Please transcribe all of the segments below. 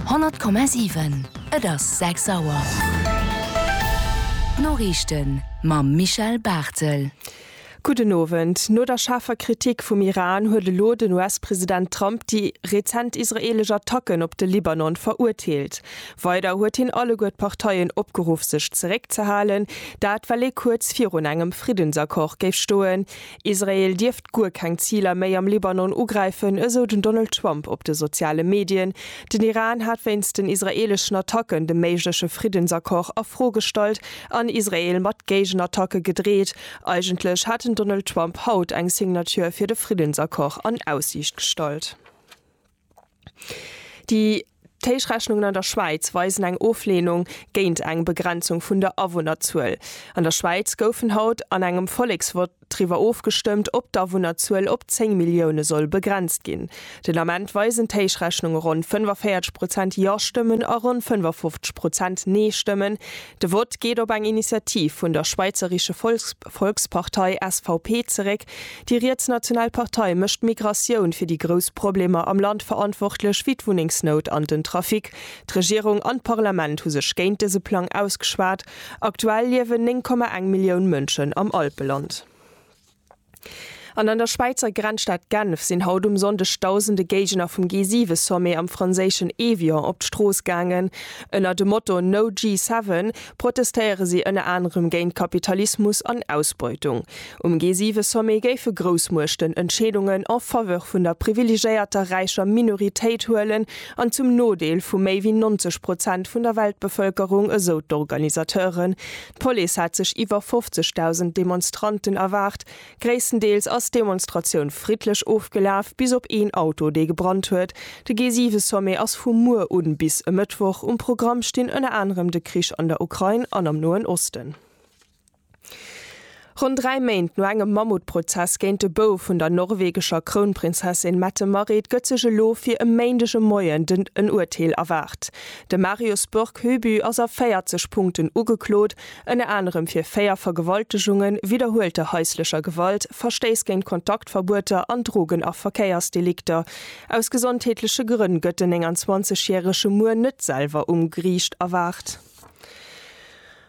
100,7 Et ass 6 Auer. D'Noriichten mam Michel Barthel. Gudden Owend. No der schaarfer Kritik vum Iran huet elo den US-President Trump déi rezent israeelesch Attacken op de Libanon verurteelt. Weider huet hien alleguer d'Parteien opgeruff sech zeréckzehalen, dat well ee kuerz virun engem Friddensaccord géif stoen, Israel dierft guer keng Ziler méi am Libanon ugräifen, esou den Donald Trump op de soziale Medien. Den Iran hat wéinst den israeeleschen Attacken de méigleche Friddensaccord a Fro gestallt an Israel mat Géigenattacke gedreet. Eigentlech hat den Donald Trump haut eng Signature fir de Friddensaccord an Aussiicht gestallt. Déi Téschrechnungen an der Schwäiz weisen eng Ofleenung géint eng Begrenzung vun der Awunnerzuel. An der Schwäiz goufen haut an engem Volleksvott driwwer ofgestëmmt, ob d'Awunnerzuel op 10 Millioune soll begrenzt ginn. Den Ament weisen d'Téschrechnunge ronn 45 Prozent Ja-Stëmmen a ronn 55 Prozent Nee-Stëmmen, De Vott geet op eng Initiativ vun der schweizerische Volkspartei, SVP, zeréck. Déi rietsnational Partei mécht d'Migratioun fir déi grouss Problemer am Land verantwortlech, wéi d'Wunnengsnout an den Trafic. D'Regierung an d'Parlament hu sech géint dëse Plang ausgeschwat. Aktuell liewen 9,1 Millioun Mënschen am Alpeland. An an der Schwäizer Grenzstad Genf sinn haut um Sonndeg dausende Géigner vum G7-Sommet am franséischen Évian op d'Strooss gaangen. Ënner dem Motto No G7 protestéiere si ënner anerem géint Kapitalismus an Ausbeutung. Um G7-Sommet géife Groussmuechten Entscheedungen en Faveur vun der privilegéierter räicher Minoritéit huelen an zum Nodeel vu méi wéi 90 Prozent vun der Weltbevëlkerung, esou d'Organisateuren. D'Police hat sech iwwer 50.000 Demonstranten erwaart. Gréisstendeels ass d'Demonstratioun friddlech ofgelaf, bis op een Auto, dee gebrannt huet. De G7-Sommet ass vu muer un bis e Mëttwoch. Um Programm stinn ënner anerem de Krich an der Ukrain an am Noen Osten. Ronn dräi Méint no engem Mammutprozess géint de Bouf vun der norwegescher Krounprinzessin Mette-Marit gëtt sech elo fir e Méindeg e Moien den en Urteel erwaart. De Marius Borg Høby ass a 40 Punkten ugeklot, ënner anerem fir véier Vergewaltegungen, widderhuelter haislecher Gewalt, Verstéiss géint Kontaktverbueter an Drogen a Verkéiersdelikter. Aus gesondheetleche Grënn gëtt den 29 järege muer net selwer um Geriicht erwaart.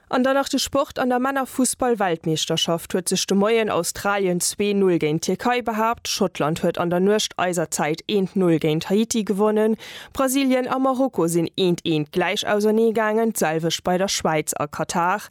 An dann nach de Sport, An der Männerfussball-Weltmeeschterschaft huet sech de Moien Australien zwee Null géint d'Tierkei behaapt, Schottland huet an der Nuecht eiser Zäit eent Null géint Haiti gewonnen, Brasilien a Marokko sinn eent eent gläich ausernee gaangen, d'selwecht bei der Schwäiz a Katar.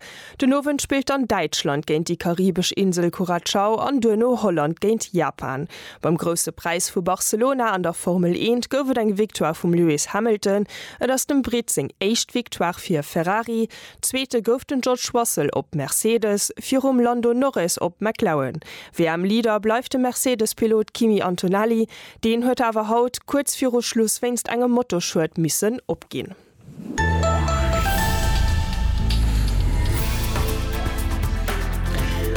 Den Owend spillt dann Däitschland géint déi karibesch Insel Curacao an duerno Holland géint Japan. Beim Grousse Präis vu Barcelona an der Formel Eent gouf et eng Victoire vum Lewis Hamilton. Et ass dem Britt seng éischt Victoire fir Ferrari. Zweete gouf den George Russell op Mercedes, virum Lando Norris op McLaren. WM-Leader bleift de Mercedes-Pilot Kimi Antonelli, deen huet awer haut kuerz viru Schluss wéinst engem Motorschued missen opginn.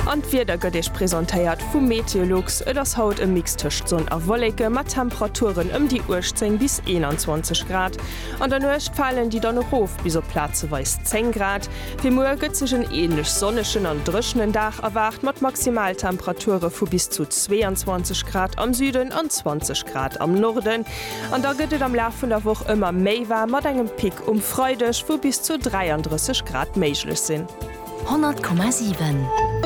An d'Wieder gëtt Iech presentéiert vum Meteolux, et ass haut e Mix tëscht Sonn a Wolleke mat Temperaturen ëm déi 18 bis 21 Grad, An der Nuecht falen déi dann erof bis op plazeweis 10 Grad. Fir muer gëtt sech en änlech sonnegen an dréchenen Dag erwaart mat Maximaltemperature vu bis zu 22 Grad am Süden an 20 Grad am Norden. An da gëtt et am Laf vun der Woch ëmmer méi waarm mat engem Pic um Freideg, wou bis zu 33 Grad méiglech sinn. 100,7.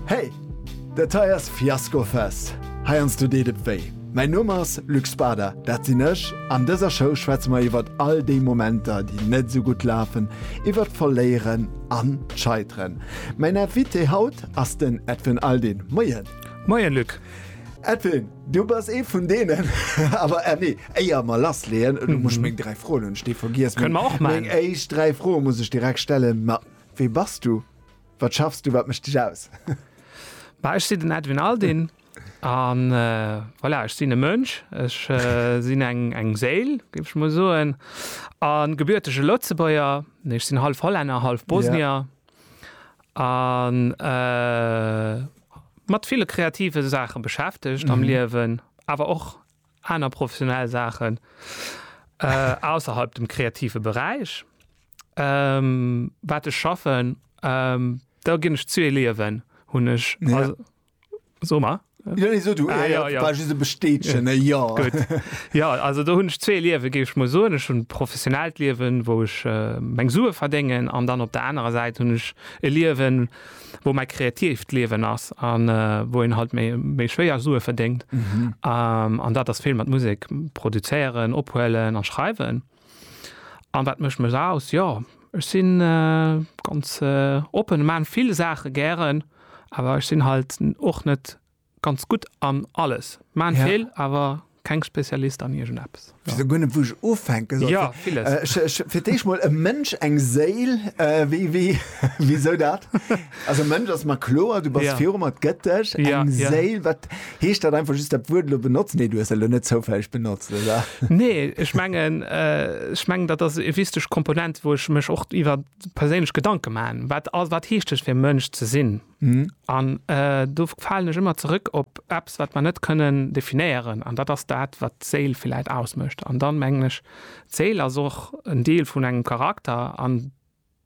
Hey! Dat hei ass Fiasco Fest. Heiansdo deet et wéi. Mäin Numm ass Luc Spada, dat sinn ech. An dëser Show schwätze mer iwwert all déi Momenter, déi net esou gutt lafen, iwwert d'Verléieren an d'Scheiteren. Mäin Invité haut ass den Edwin Aldin. Moien! Moien, Luc! Edwin, du bass ee vun deenen. Awer eh nee, éier mer lassleeën, du musst meng dräi Froen hunn ech déi vergiess. Kënne mer och maachen. Meng éischt dräi Froe muss ech direkt stellen. Ma wee bass du? Wat schaffs du? Wat mécht dech aus? Bah, ech sinn den Edwin Aldin an voilà, ech sinn e Mënsch, ech sinn eng eng Séil, géif ech mol soen, a gebürtege Lëtzebuerger. Nee, ech sinn hallef Hollänner, hallef Bosnier an. mat ville kreative Saache beschäftegt am Liewen, awer och aner professionell Saachen ausserhalb dem kreative Beräich, wat ech schaffen. Do ginn ech zwee Liewen, hunn ech. So mar. Jo, nee, so du. Ah jo, jo. War just e Bestätegen, e Jo. Gutt. Jo, also do hunn ech zwee Liewen, géif ech mol soen. Ech hunn e professionellt Liewen, wou ech meng Sue verdéngen, an dann op der anerer Säit hunn ech e Liewen, wou mei kreatiivt Liewen ass an wou een halt méi méi schwéier Sue verdéngt an dat ass vill mat Musek produzéieren, ophuelen a schreiwen. An wat mécht mech aus? Jo ech sinn ganz oppen, ech maan vill Saache gären, awer ech sinn halt och net, Ganz gudd an alles, ma en Feel awer keng Spezialist an iergend eppes. Ech wees guer net wou ech ufänken soll. Jo villes. Ech fir d'éischt mol e Mënsch, eng Séil, wéi wéi wisou dat? Also e Mënsch ass mer kloer, du bass viru mer, et gëtt dech. Eng Séil, wat heescht dat? Einfach just dat Wuert elo benotzen? Nee du hues dat elo net zoufälleg benotzt oder? Nee ech mengen, ech mengen dat ass e wisteg Komponent wou ech mech och iwwer perséinlech Gedanken man, wat heescht et fir Mënsch ze sinn? Mhm. An äh, do falen ech ëmmer zurück op Apps, wat man net kënnen definéieren. An dat ass dat, wat d'Séil vielleicht ausmëscht. An dann mengen ech, d'Séil ass och en Deel vun engem Charakter an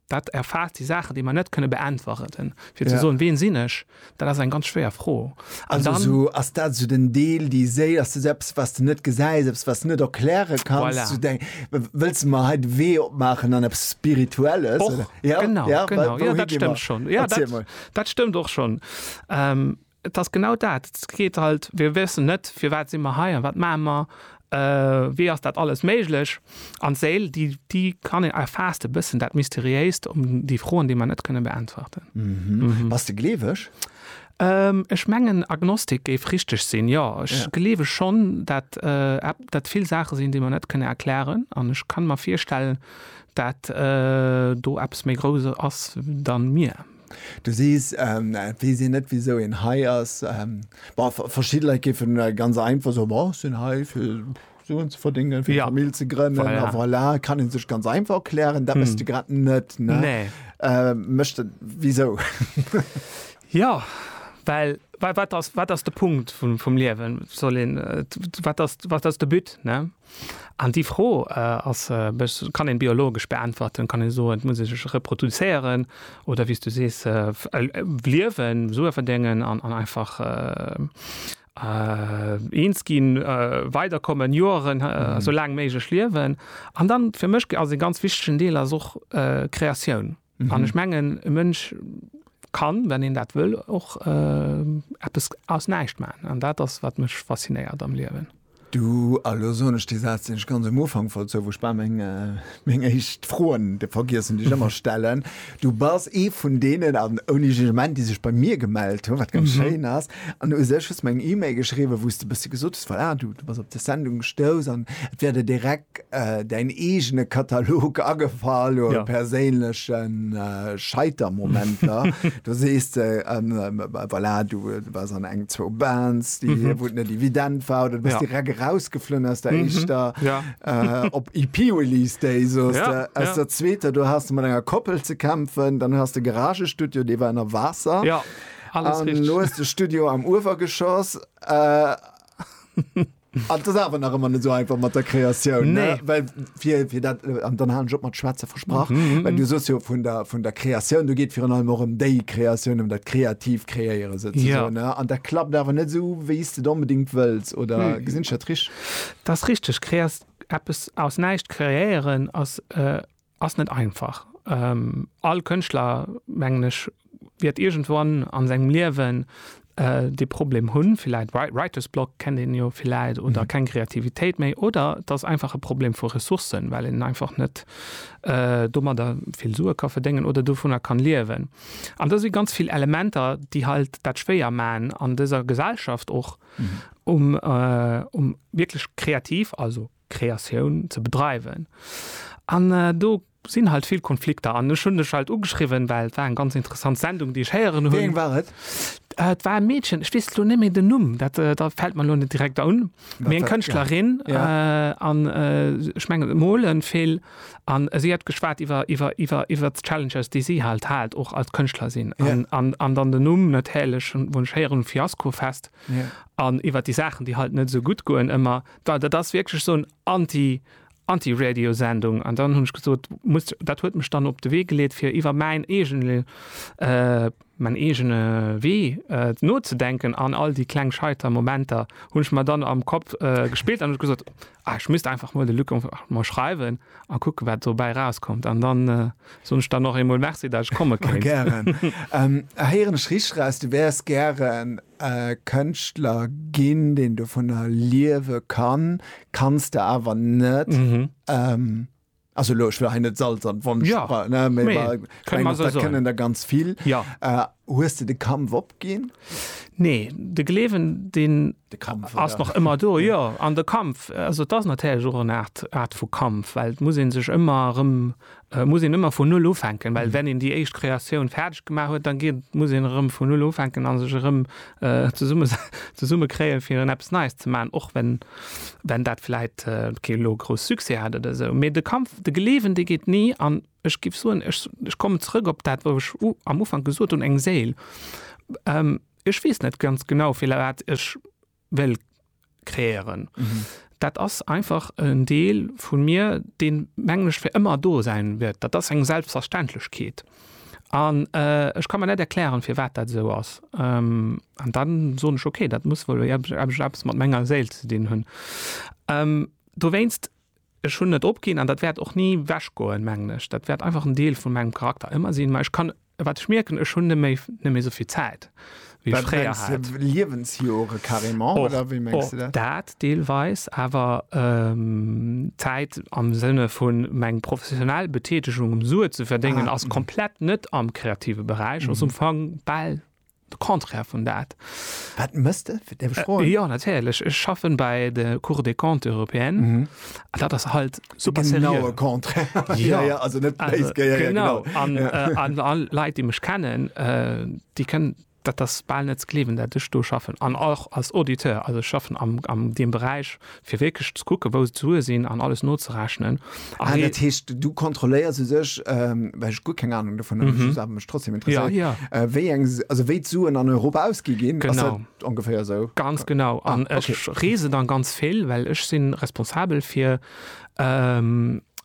dat erfaasst déi Saachen, déi man net kënne beäntweren. Fir ze soen, ween sinn ech? Dat ass eng ganz schwéier Fro. An dann. Also sou ass dat sou den Deel, déi Séil, ass dat eppes wat s de net gesäis, eppes wat s de net erkläre kanns, Voilà. sou deng, w- wëlls de mer hei de Wee opmaachen an eppes Spirituelles? Och, oder? Ja, genau, ja, genau. wa- Ja, wouhi dat gi stëmmt mer? schonn. Ja, Erziel dat, mol. dat stëmmt och schonn. Ähm, et ass genau dat. Et geet halt, wir wëssen net, firwat si mer hei an wat maache mer, äh, wéi ass dat alles méiglech? An d'Séil, déi, déi kann een, erfaasst e bëssen dat Mysteriéist, um déi Froen, déi mer net kënne beäntwerten. Bass de gleeweg? Ech mengen Agnostik géif richteg sinn, jo. Ech gleewe schonn, dat dat vill Saache sinn, déi mer net kënne erklären. An ech kann mer virstellen, dat do eppes méi Grousses ass dann mir. Du sees, et weess een net wisou een hei ass. Bon, verschidde Leit géifen ganz einfach soen, bon, ech sinn hei fir. Suen ze verdingen, fir ja. Famill ze grënnen voilà. a voilà, kann en sech ganz einfach erklären, dat mess hm. de grad net ne? Nee. Äh, Mëchte wieso? ja, well wat, wat, ass, wat ass de Punkt vum, vum Liewen soll en äh, wat ass, wat ass de Bütt ne? An déi Fro äh, ass äh, kann en biologesch beäntwerten, kann en soen, et muss sech reproduzéieren oder wies du sees äh, äh, liewen, Sue verdingen an, an einfach äh, Äh, eens ginn, äh, weiderkommen, Joeren, äh, mhm. so laang méiglech liewen. An dann fir mech ass e ganz wichtegen Deel ass och äh, Kreatioun. Mhm. An ech mengen e Mënsch kann, wenn een dat wëll och äh, Apps aus näicht man. An dat ass wat mech faszinéiert am Liewen. Du, a lo soen ech dee Saz, deen ech ganz um Ufank wollt soen, wou ech bal meng, meng éischt Froen de vergiessen, déi ech ëmmer stellen, du bass ee vun deenen, an ouni Jugement, déi sech bei mir gemellt hunn, wat ganz schéin ass. An u sech hues de mer eng E-Mail geschriwwen, wou s de e bëssi gesot hues, voilà, du, du bass op dës Sendung gestouss an et wär der direkt, Däin eegene Katalog agefall u perséinleche Scheitermomenter. Du sees de, voilà, du waars an eng, zwou Bands, wou et net evident war, oder du bass direkt erausgeflunn aus der éischter, op EP-Release Day soss de, aus der zweeter. Du has mat enger Koppel ze kämpfen, dann hues de Garagestudio, dee war ënner Waasser, an elo hues de Studio am Uewergeschoss. An et ass awer nach ëmmer net esou einfach mat der Kreatioun. Nee. Ne? Well fir, fir dat, äh, an dann halen ech op mat Schwätze versprach, mm -hmm. well du sos jo vun der, vun der Kreatioun, du geet virun allem och ëm déi Kreatioun, ëm dat kreativ Kreéiere sozusagen. Ja. Ne? An dat klappt awer net esou, wéi s de et onbedéngt wëlls, oder mm. gesinn ech dat richteg? Dat ass richteg. Kreas eppes aus näischt kreéieren ass. Äh Ass net einfach. All Kënschtler, mengen ech, wäert iergendwann a sengem Liewen dee Problem hunn, villäit Writer's Block, kennt een jo villäit, oder keng Kreativitéit méi. Oder et ass einfach e Problem vu Ressourcen, well een einfach net domadder vill Sue ka verdéngen oder dovunner kann liewen. An da si ganz vill Elementer, déi halt dat schwéier maachen an dëser Gesellschaft och, um wierklech kreativ, also. Kreatioun ze bedreiwen. An do sinn halt vill Konflikter. An ech hunn dech halt ugeschriwwen, well et war eng ganz interessant Sendung, déi ech héieren hunn. Wéi eng war et? Et war e Meedchen, ech weess elo net méi den Numm, dat fält mer elo net direkt un, mee eng Kënschtlerin. An ech mengen, se mole vill. An si hat geschwat iwwer, iwwer, iwwer, iwwer d'Challenges, déi si halt hat och als Kënschtler sinn. An dann den Numm natierlech, wou ech héieren hunn, Fiaskofest. An iwwer déi Saachen, déi halt net esou gutt goen ëmmer. Well dat ass wierklech esou en Anti, Anti-Radio-Sendung. An dann hunn ech gesot, muss, dat huet mech dann op de Wee geleet, fir iwwer mäin eegene, mäin eegene Wee nozedenken. An all déi kleng scheiter Momenter hunn ech mer dann am Kapp gespillt an ech gesot, ah, ech misst einfach mol de Luc einfach mol schreiwen a kucken, wat dobäi erauskommt. An dann soen ech der nach eemol Merci, datt ech komme kéint. Gären. Héieren ech richteg eraus, du wäers gären Kënschtler ginn, deen dovunner liewe kann, kanns de awer net, also elo, ech wëll hei net Salz an d'Wonn streuen, ne, mee ech mengen, dat kënnen der ganz vill. Hues de de Kampf opginn? Nee, de Gleewen, deen ass nach ëmmer do, jo. An de Kampf, also et ass natierlech och eng Aart vu Kampf, well et muss ee sech ëmmer erëm Et muss een ëmmer vun Null ufänken, well wenn een déi éischt Kreatioun fäerdeg gemaach huet, da geet, muss een erëm vun Null ufänken a sech erëm zesummekréien, fir erëm eppes Neies ze maachen, och wenn, wenn dat vläicht kee elo grouss Succès hat oder esou. Mee de Kampf, de geleewen, dee geet ni. An ech géif soen, ech, ech kommen zrëck op dat, wou ech am Ufank gesot hunn, eng Séil. Ech weess net ganz genau, firwat ech. well kreéieren. Mhm. Dat ass einfach en Deel vun mir, deen mengen ech fir ëmmer do säin wäert. Dat ass eng Selbstverständlechkeet. An äh, ech kann mer net erklären, fir wat dat esou ass. Ähm, an dann soen ech okay, dat muss wuel eppes eppes- eppes mat menger Séil ze dinn hunn. Ähm, dowéinst ech hunn net opginn an dat wäert och ni wechgoen, mengen ech. Dat wäert einfach en Deel vun mengem Charakter ëmmer sinn. Mä ech kann Wat ech mierken, ech hunn net méi net méi souvill Zäit, wéi ech fréier hat. Liewensjore carrément oder wéi mengs du dat? Och dat deelweis, awer Zäit am Sënne vu meng professionell Betätegung, um Sue ze verdéngen, ass komplett net am kreative Beräich, ass um Fong bal De Contraire vun dat. Wat mëss de? Fir däerf ech froen? Jo, natierlech. Ech schaffen bei de Cour des Comptes européennes. Mhm. An dat ass halt super seriö. De genaue Contraire. Ja, ja, also net béis geiert. Also, genau. An, äh, an all Leit, déi mech kennen, äh, déi kënnen, dat ass bal net ze gleewen, dat ech do schaffen. An och als Auditeur. Also ech schaffen am, am deem Beräich, Fir wierklech ze kucken, wou d'Sue sinn an alles nozerechnen. Ah, dat heescht, du kontrolléiers u sech, well ech guer keng Anung dovun hunn, just awer mech trotzdem interesséiert, wéi eng, also wéi d'Suen an Europa ausgi ginn. Ass dat ongeféier esou? Ganz genau. An ech reesen dann ganz vill, well ech si responsabel fir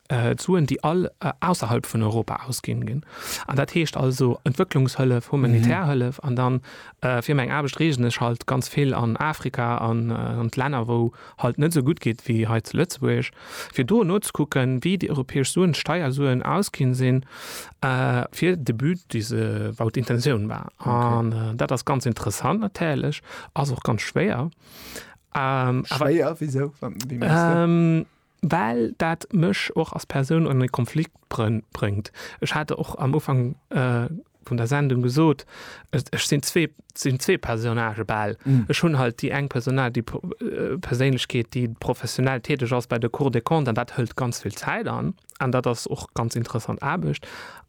d'Suen, déi all ausserhalb vun Europa ausginn ginn. An dat heescht also Entwëcklungshëllef, humanitär Hëllef an dann Fir meng Aarbecht reesen ech halt ganz vill an Afrika an an d'Länner wou halt net esou gutt geet wéi hei zu Lëtzebuerg, fir do nozekucken wéi déi europäesch Suen, d'Steiersuen ausginn sinn fir de But dee se wou d'Intentioun war. An dat ass ganz interessant natierlech, ass och ganz schwéier. Schwéier wisou, wéi mengs de? well dat mech och als Persoun an e Konflikt bréngt. Ech hat och am Ufank vun der Sendung gesot, ech sinn zwee, sinn zwee Personnagë bal. Ech hunn halt déi eng Personnage, déi Perséinlechkeet, déi professionell täteg ass bei der Cour des Comptes an dat hëlt ganz vill Zäit an, an dat ass och ganz interessant Aarbecht.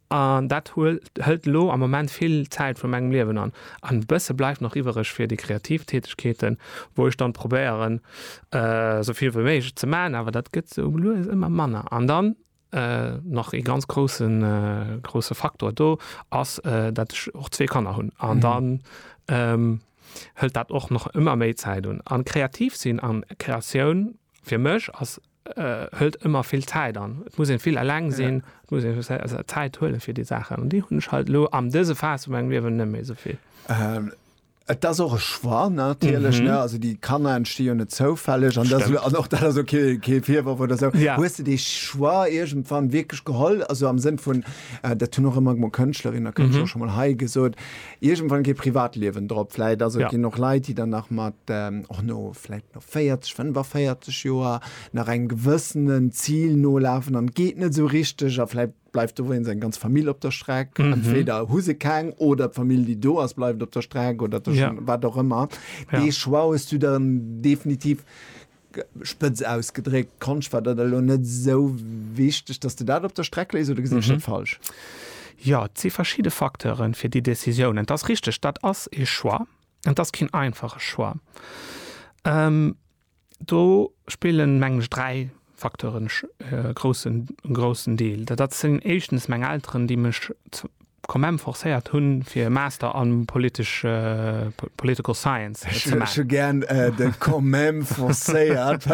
An dat hëlt elo am Moment vill Zäit vu mengem Liewen an. An e bësse bleift nach iwwereg fir déi kreativ Tätegkeeten, wou ech dann probéieren, esou vill wéi méiglech ze maachen, awer dat gëtt esou lues ëmmer manner. An dann nach ee ganz groussen, grousse Faktor do ass, dat ech och zwee Kanner hunn. An dann hëlt dat och nach ëmmer méi Zäit un. An kreativ sinn an Kreatioun fir mech ass. hëlt ëmmer vill Zäit an. Et muss een vill eleng sinn, et muss een Zäit huelen fir déi Saachen. An déi hunn ech halt elo am dëse Phase vu mengem Liewen net méi souvill. Et ass och e Choix natierlech. Also déi Kanner entsti jo net zoufälleg an dat an och dat ass ok, kee Virworf oder esou. Hues de dee Choix iergendwann wierklech geholl, also am Sënn vun, dat hunn och ëmmer mol Kënschtlerin a Kënschtler scho mol hei gesot, Iergendwann geet Privatliewen drop. Vläit also ginn och Leit, déi dann nach mat, och no vläit no 40, 45 Joer nach engem gewëssenen Zil nolafen an et geet net esou richteg a vläit bleift do wéinst eng ganz Famill op der Streck. Entweder hu se keng oder d'Famill, déi do ass, bleift op der Streck oder wat och ëmmer. Dee Choix hues du dann definitiv Spëtz ausgedréckt, Konscht war dat elo net esou wichteg, dass de dat op der Streck léis, oder gesinn ech dat falsch? Jo, et si verschidde Facteuren fir déi Décisiounen. Et ass richteg, dat ass ee Choix, an et ass keen einfache Choix. Do spillen, mengen ech, dräi Facteuren e groussen, groussen Deel. Dat sinn éischtens meng Elteren, déi mech, Commem forcéiert hun fir e Master an politesch Political Science ze maachen. Ech hu gern de Commem forcéiert.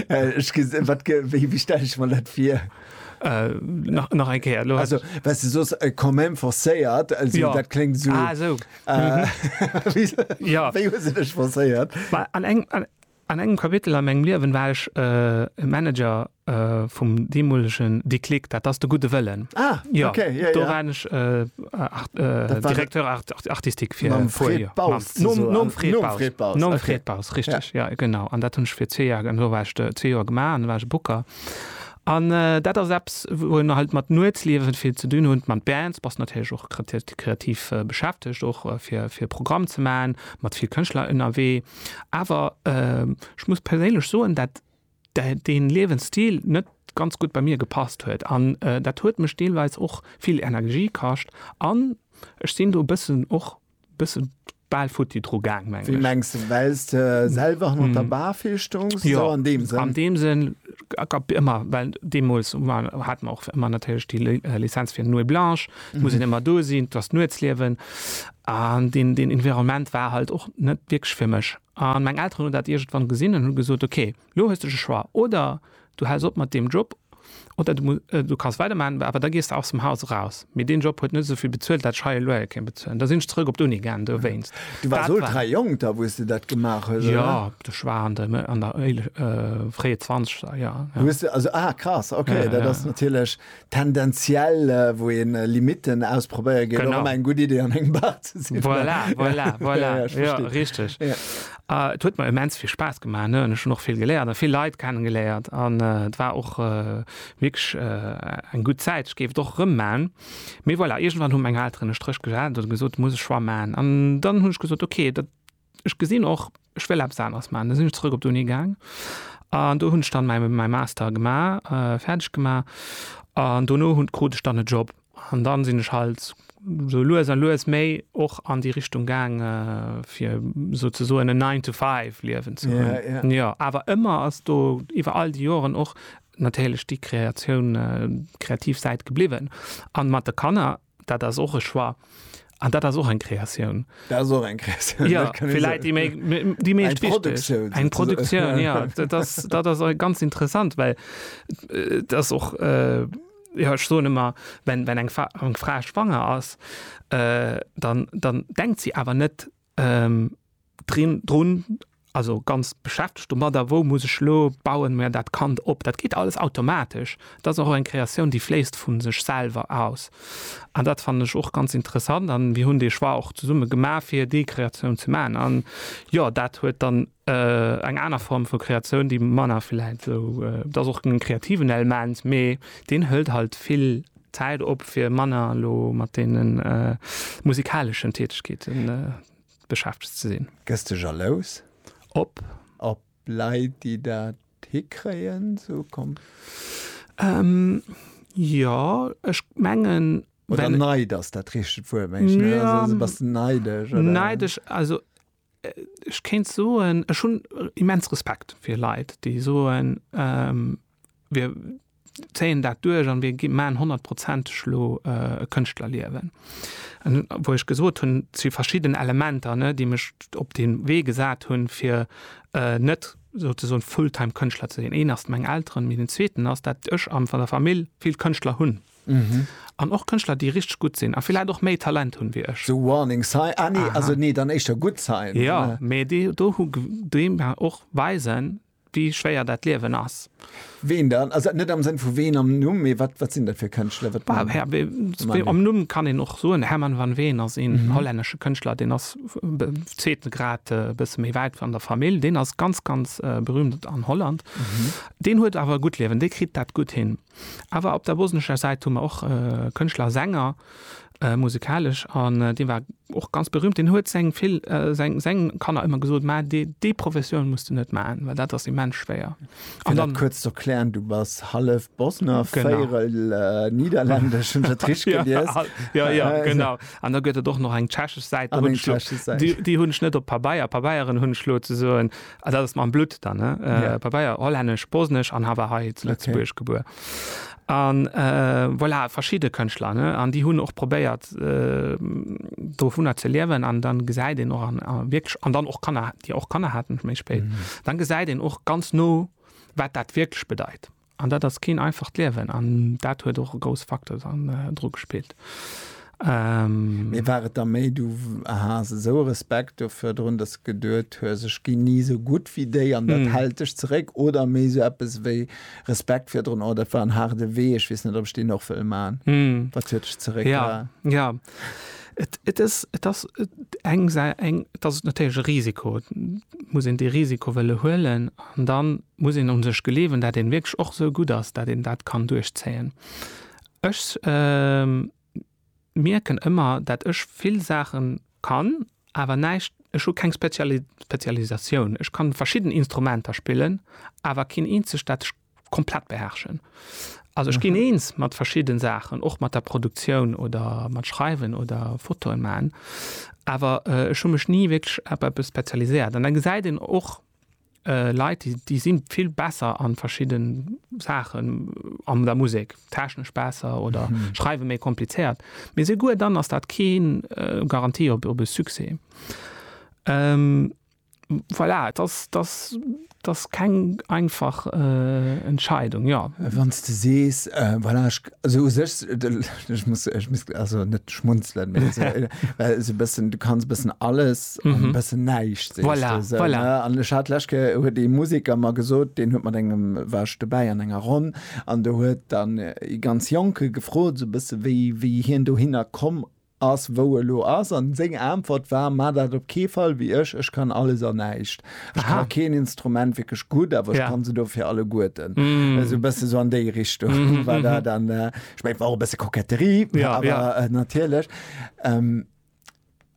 Wéi stelle ech mer dat fir? Nach eng Kéier. Also well s de sos e Commem forcéiert, dat kléngt esou. Ah esou. Wéi hu se dech forcéiert? An engem Kapitel a mengem Liewen war ech e Manager vum deemolegen Déclic, dat ass de Gudde Wëllen. Ah, okay, jo, jo. Do waren ech Directeur artistique fir e puer Joer. Mam Fred Baus zesumme. Nom Fred Baus. Nom Fred Baus. Nom Fred Baus, richteg, jo, genau. An dat hunn ech fir zwee Joer, do war ech zwee Joer gemaach an da war ech e Booker. An dat ass eppes, wou een halt mat Nuetsliewe vill ze dinn hutt, mat Bands, bass natierlech och kreativ beschäftegt, och fir e Programm ze maachen, mat vill Kënschtler ënnerwee. Awer ech muss perséinlech soen, dat dee Liewensstil net ganz gutt bei mir gepasst huet an dat huet mech deelweis och vill Energie kascht an ech sinn do bëssen och bësse bal futti dru gaang mengen ech. Wéi mengs de? Well s de selwer hanner der Bar vill stoungs? An deem Sënn? Gab ëmmer, well deemools hate mer och ëmmer natierlech déi Lizenz fir Nuit blanche, et muss een ëmmer do sinn, et ass d'Nuetsliewen. An deen Environnement war halt och net wierklech fir mech. An meng Elteren hunn dat iergendwann gesinn an hu gesot, ok, elo hues de de Choix, oder du häls op mat deem Job oder du kasst weidermaachen, awer da gees de aus dem Haus eraus. Mee deen Job huet net esou vill bezuelt, dat ech hei elo hei kéint bezuelen. Da sinn ech zrëck op d'Uni gaangen dowéinst. Du waars ultra jonk da, wou s de dat gemaach hues, oder? Jo, ech war an de, an der éile, fréie Zwanzeger, jo, jo. Hues de also, ah, krass, ok, dat ass natierlech tendenziell, wou ee Limitten ausprobéiere geet, och ëmmer eng gutt Iddi, an engem Bar ze sitzen. Voilà, voilà, voilà, jo, richteg. Et huet mer immens vill Spaass gemaach, an ech hunn och vill geléiert a vill Leit kenne geléiert. An et war och wierklech eng gutt Zäit, ech géif et och erëm man, mee voilà, iergendwann hu meng Elteren e Stréch gesat oder gesot, muss e Choix man an dann hunn ech gesot, okay, dat ech gesinn och, ech wëll eppes aneres man. Da sinn ech zrëck op d'Uni gaang an do hunn ech dann mäi Master gemaach, fäerdeg gemaach an dono hunn krut ech dann e Job. An dann sinn ech halt esou lues a lues méi och an déi Richtung gaang fir souzesoen en Nine to Five Liewen ze hunn. Jo, awer ëmmer ass do iwwer all déi Joren och natierlech déi Kreatioun, kreativ Säit gebliwwen. An mat de Kanner, dat ass och e Choix an dat ass och eng Kreatioun. Dat ass och eng Kreatioun. Jo, fir Läit déi méi, déi méi wichteg. Eng Produktioun. Eng Produktioun, jo. Dat ass ganz interessant, well et ass och. Jo, ech soen ëmmer, wenn wenn eng eng Fra schwanger ass, dann dann denkt si awer net drin drun, also ganz beschäftegt domadder, wou muss ech elo bauen mer dat Kand op. Dat geet alles automatesch. Et ass och eng Kreatioun, déi fléisst vu sech selwer aus. An dat fannen ech och ganz interessant. An mir hunn dee Choix och zesumme gemaach, fir déi Kreatioun ze maachen. An jo, dat huet dann Eng aner Form vu Kreatioun, déi manner vläicht esou, et ass och en kreativen Elment, mee deen hëlt halt vill Zäit op, fir manner elo mat deene musikaleschen Tätegkeete beschäftegt ze sinn. Gëss de jalous? Op? Op Leit, déi dat hikréien? Jo, ech mengen. Oder Neid ass dat richtegt Wuert, mengen ech. Bass de neidesch? Neidesch, also Ech kéint soen, ech hunn immens Respekt fir Leit, déi soen, wir zéien dat duerch an wir maachen honnertprozenteg elo e Kënschtlerliewen. Wou ech gesot hunn, et si verschidden Elementer, déi mech op dee Wee gesat hunn, fir net souzesoen full-time Kënschtler ze sinn. Een ass meng Elteren, mee den zweeten ass, dat ech an der Famill vill Kënschtler hunn. Mhm. An och Kënschtler, déi richteg gutt sinn a villäit och méi Talent hunn wéi ech. So warning sign, ah nee, also nee, dann éischter good sign. Jo, mee déi do hu déi mer och weisen, wéi schwéier dat Liewen ass. Ween dann? Also net am Sënn vu ween am Numm, mee wat, wat sinn dat fir Kënschtler? Wat Bah, Herr, wee, wee, am Numm kann een och soen, Herman van Veen ass een mhm. hollännesche Kënschtler, den ass be, zweeten Grad e äh, bësse méi wäit an der Famill, den ass ganz ganz äh, berühmt an Holland. Mhm. Den huet awer gutt Liewen, dee kritt dat gutt hin. Awer op der bosnescher Säit hu mer och Kënschtler a Sänger, musikalesch, an dee war och ganz berüümt. Deen huet seng vill, seng, seng Kanner ëmmer gesot, mä déi, déi Professioun muss de net maachen, well dat ass immens schwéier. Fir dat kuerz ze erklären, du bass hallef Bosner, véierel Nidderlännesch, hunn ech dat richteg gelies? Ja, ja, ja, genau. An da gëtt et och nach eng tschechesch Säit, déi hunn ech net op Pabeier, Pabeieren hunn ech elo ze soen. Ah, dat ass mam Blutt dann, ne? Äh, yeah. Pabeier, hollännesch, bosnesch an hawer hei zu Lëtzebuerg okay. gebuer. An äh, voilà, verschiide Kënchtler, ne? An déi hunn och probéiert äh, do vunner ze liewen an dann gesäit den och an äh, wirklich an dann och Kanner, Dir och Kanner hatten méi spéit. Mm. Dann gesäit den och ganz no, wat dat wirklich bedeit. An dat ass keen einfacht Liewen an dat huet och e grouss Facteur dann dru gespillt. Mee war et da méi du haas esou e Respekt do virdrun, dass de geduet hues, ech ginn ni esou gutt wéi déi an dat hält dech zeréck oder méi esou eppes wéi Respekt virdrun, oh dat war en haarde Wee, ech weess net ob ech deen och wëll man? Wat huet dech zeréckgehalen? Jo, jo. Et, et ass, et ass eng Sa-, eng, et ass natierlech e Risiko. Et muss een dee Risiko wëlle huelen an da muss een un sech gleewen, dat een wierklech och esou gutt ass, dat een dat kann duerchzéien. Ech mierken ëmmer, dat ech vill Saachen kann, awer näischt, ech hu keng Speziali-, Spezialisatioun. Ech kann verschidden Instrumenter spillen, awer keen eenzegt, dat ech komplett beherrschen. Also ich gin eens mat verschidden Saachen, och mat der Produktioun oder mat Schreiwen oder Fotoen maan, awer ech hun mech nie wierklech op eppes spezialiséiert. An dann gesäit een och Leit, déi déi sin vill besser an verschidden Saachen an der Musek, technesch besser oder schreiwen méi komplizéiert. Mee seguer dann ass dat keen Garantie op op e Succès. Voilà, et ass, et ass, et ass keng einfach Entscheidung, jo. Wann s de sees, voilà, ech, also u sech, ech muss, ech muss also net schmunzelen, mä well esou e bëssen, du kanns e bëssen alles an e bëssen näischt, sees de esou, ne? An ech hat d'lescht Kéier, huet ee Museker mer gesot, deen huet mat engem, war ech dobäi an enger Ronn, an do huet dann ee ganz Jonke gefrot, esou e bësse wéi, wéi hien dohinner komm Ass wou e lo ass. An seng Aentwert war, Maa dat op kee Fall wéi ech, ech kann alles an näischt. Ech ka keen Instrument wierklech gutt, awer ech kann se dofir alleguerten. Esou e bësse sou an déi Richtung war dat. An ech mengen, et war och e bësse Koketterie, awer natierlech.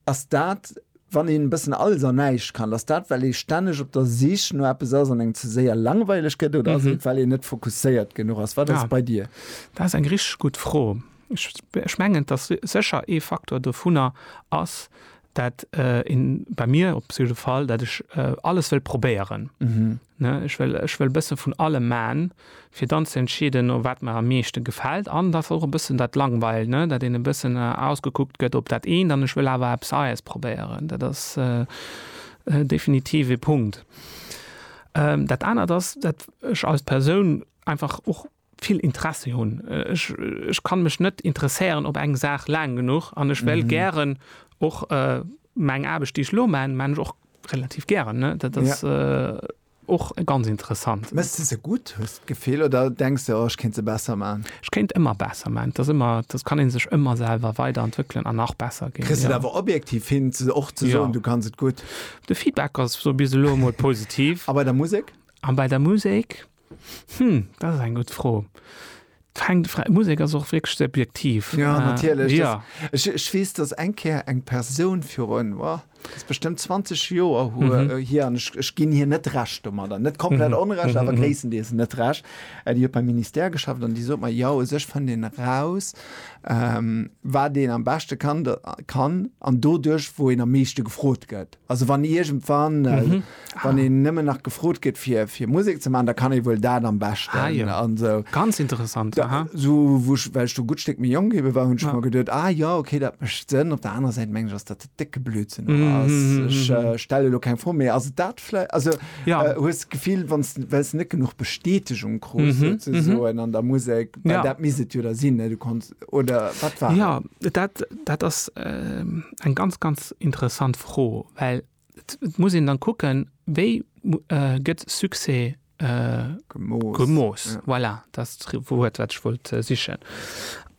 Ass dat, wann een e bëssen alles an näischt kann, ass dat well ee stänneg op der Sich no eppes ass an engem ze séier langweileg gëtt, oder ass et well een net fokusséiert genuch ass? Wat ass et bei dir? Dat ass eng richteg gutt Fro. Ech mengen, dass sécher ee Faktor dovunner ass, dat een, bei mir op jidde Fall, dat ech alles wëll probéieren. Ech wëll, ech wëll e bësse vun allem man, fir dann ze entscheeden, oh wat mer am meeschte gefält. An dass och e bëssen dat langweilt, ne, dat een e bëssen ausgekuckt gëtt op dat eent an ech wëll awer eppes Neies probéieren. Dat ass definitiv ee Punkt. Dat anert ass, dat ech als Persoun einfach och, vill Interesse hunn. Ech, ech kann mech net interesséieren op eng Saach laang genuch an ech wéll gären och meng Aarbecht, déi ech elo man, man ech och relativ gären, ne? Dat ass och ganz interessant. Méchs de se gutt, hues de d'Gefill, oder denks de, oh ech kéint se besser man? Ech kéint ëmmer besser man. Et ass ëmmer, et kann ee sech ëmmer selwer weiderentwéckelen an nach besser ginn. Kriss de et awer objektiv hin och ze soen, du kanns et gutt? De Feedback ass bis elo emol positiv. A bei der Musek? A bei der Musek? Hm, dat ass eng gutt Fro. D'Musek ass och wierklech subjektiv. Ja, äh, natierlech. Ja. Ech, ech weess, dass eng Kéier eng Persoun virun, oh, das bestëmmt 20 Joer hu mhm. Äh, hier, an ech, ech ginn hier net recht um oder net komplett mhm. onrecht, awer mhm. gréisstendeels net recht. Äh, Dir huet beim Ministère geschafft an Dir sot mer, ja, sech fën den raus, ähm, wat deen am beschte kann, kann an dodurch, wo en am meeschte gefrot gëtt. Also wann iergendwann, mhm. ah. wann een nëmmen nach gefrot gëtt fir fir Musik ze man, da kann e wuel dat am bestecht ah, ja. an so. ganz interessant da, so wuch well du gut Steck mir Jong gebe war hunn schon mal gedet ah ja okay dat mecht sinn op der anderen Seite meng ass dat decke Blützen mm -hmm. ich, äh, stelle lo kein vor mé as dat vielleicht also ja. äh, hues gefiel wann wells net genug Bestätigung kru mm -hmm. so, mm -hmm. an der Musik ja. dat miset jo da sinn du kannst oder wat war? Ja dat, dat ass eng ganz ganz interessant Fro, well et muss een dann kucken, wéi gëtt Succès gemooss. Voilà, dat ass d'Wuert wat ech wollt sichen.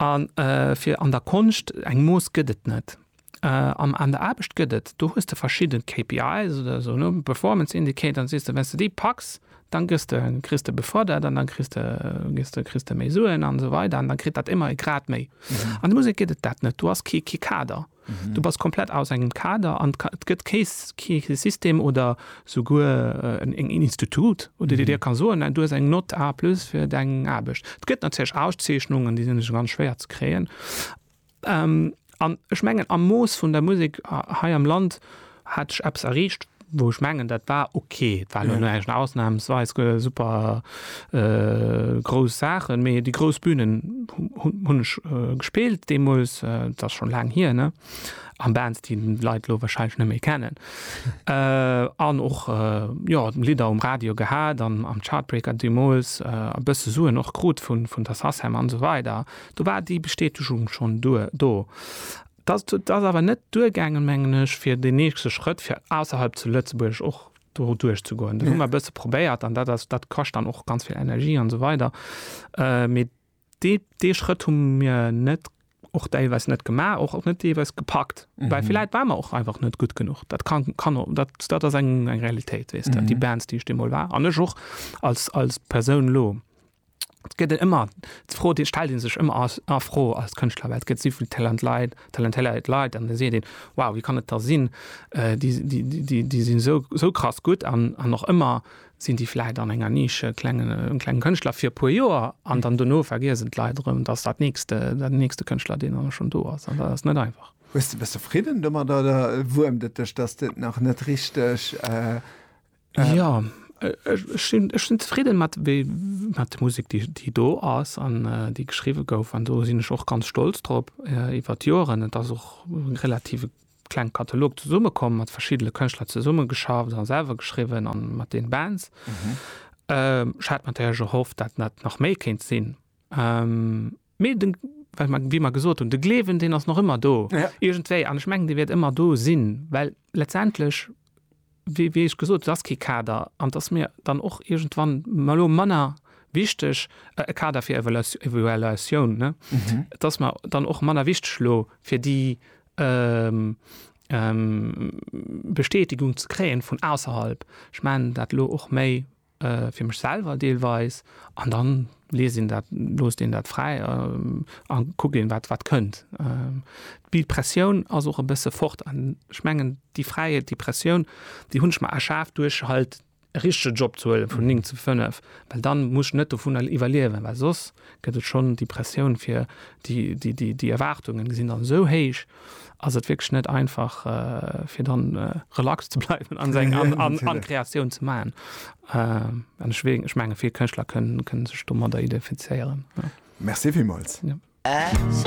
A fir an der Konscht, eng Mooss gëtt et net. An an der Aarbecht gëtt et, do hues de verschidde KPIs oder esou, ne, Performance Indicator, an sees de, wenn's de déi packs, dann gëss de, kriss de befërdert an dann kriss de, gëss de, kriss de méi Suen an esou weider an dann kritt dat ëmmer e Grad méi. An der Musek gëtt et dat net. Du has kee, kee Kader. Du bass komplett aus engem Kader an et gëtt kee, kee System oder souguer en, en Institut, wou de dir ka soen, du hues eng Nott A plus fir deng Aarbecht. Et gëtt natierlech Auszeechnungen, déi sinn ganz schwéier ze kréien. An ech mengen am Mooss vun der Musek hei am Land hat ech eppes erreecht, wou ech mengen dat war ok. Et war elo näischt ausnahmsweis super grouss Saachen, mee déi grouss Bünen hunn ech gespillt deemools, et ass schonn laang hier, ne? An Bands déi d'Leit elo wahrscheinlech net méi kennen. An och jo Lidder um Radio gehat an am Chartbreaker deemools e bësse Suen och krut vun der Sacem an esou weider. Do war déi Bestätegung schonn do. Et ass awer net duergaangen, mengen ech, fir deen nächste Schrëtt, fir ausserhalb zu Lëtzebuerg och do duerchzegoen. Dat hu mer e bësse probéiert an dat ass, dat kascht dann och ganz vill Energie an esou weider. Mee dee, dee Schrëtt hu mir net, och deelweis net gemaach, och net deelweis gepackt, well villäit ware mer och einfach net gutt genuch. Dat ka, kann, dat ass eng Realitéit, weess de. Déi Bands, déi ech deemol war an ech och als, als Persoun elo. Et gëtt en ëmmer, d'Fro déi stellt ee sech ëmmer ass a Fro als Kënschtler, well et gëtt esou vill Talent Leit, talentéiert Leit an da seet een, wow, wéi kann et da sinn, déi déi déi sinn esou esou krass gutt an an och ëmmer sinn déi vläicht an enger Nische klengen klenge Kënschtler fir e puer Joer an dann dono vergiesse d'Leit erëm, datt dat nächst dat nächste Kënschtler deen awer schonn do ass an dat ass net einfach. Hues de, bass de fridden domat oder wuermt et dech, datt et nach net richteg. Äh, ja, ech sinn, ech sinn zufrieden mat, mat der Musik, déi, déi do ass an äh, déi geschriwe gouf. An do sinn ech och ganz stolz drop äh, iwwer d'Joren. Et ass och relativ kleng Katalog zesummekomm, mat verschiedene Kënschtler zesummegeschafft an selwer geschriwen an mat den Bands. Mhm. Ähm, hat man der gehofft, dat net nach méi kéint sinn. Ähm, Mee de, wéi mer gesot hunn, de Gleewen, deen ass nach ëmmer do iergendwéi. An ech mengen, dee wäert ëmmer do sinn, well letztendlech, wéi ech gesot, et ass kee Kader an et ass mir dann och iergendwann elo manner wichteg, e Kader fir Evaluatioun, ne? Et ass mer dann och manner wichteg elo, fir déi Bestätigung ze kréien vun ausserhalb. Ech mengen dat elo och méi. fir mech selwer deelweis an dann liest een dat, loosst een dat fräi a kuckt een wat wat kënnt. Déi Pressioun ass och e bësse fort an ech mengen déi Fräiheet, déi Pressioun, déi hunn ech mer erschaf duerch halt e richtege Job ze huelen vun 9 zu 5, well dann muss ech net dovunner iwwerliewen, well soss gëtt et schonn déi Pressioun fir déi déi déi Erwaartungen sinn dann esou héich, ass et wierklech net einfach fir dann relax ze bleiwen an seng an, an, an Kreatioun ze machen. Äh, ech, ech menge vill Kënschtler kënnen, kënnen sech domadder identifizéieren. Ja. Merci villmools. Ja.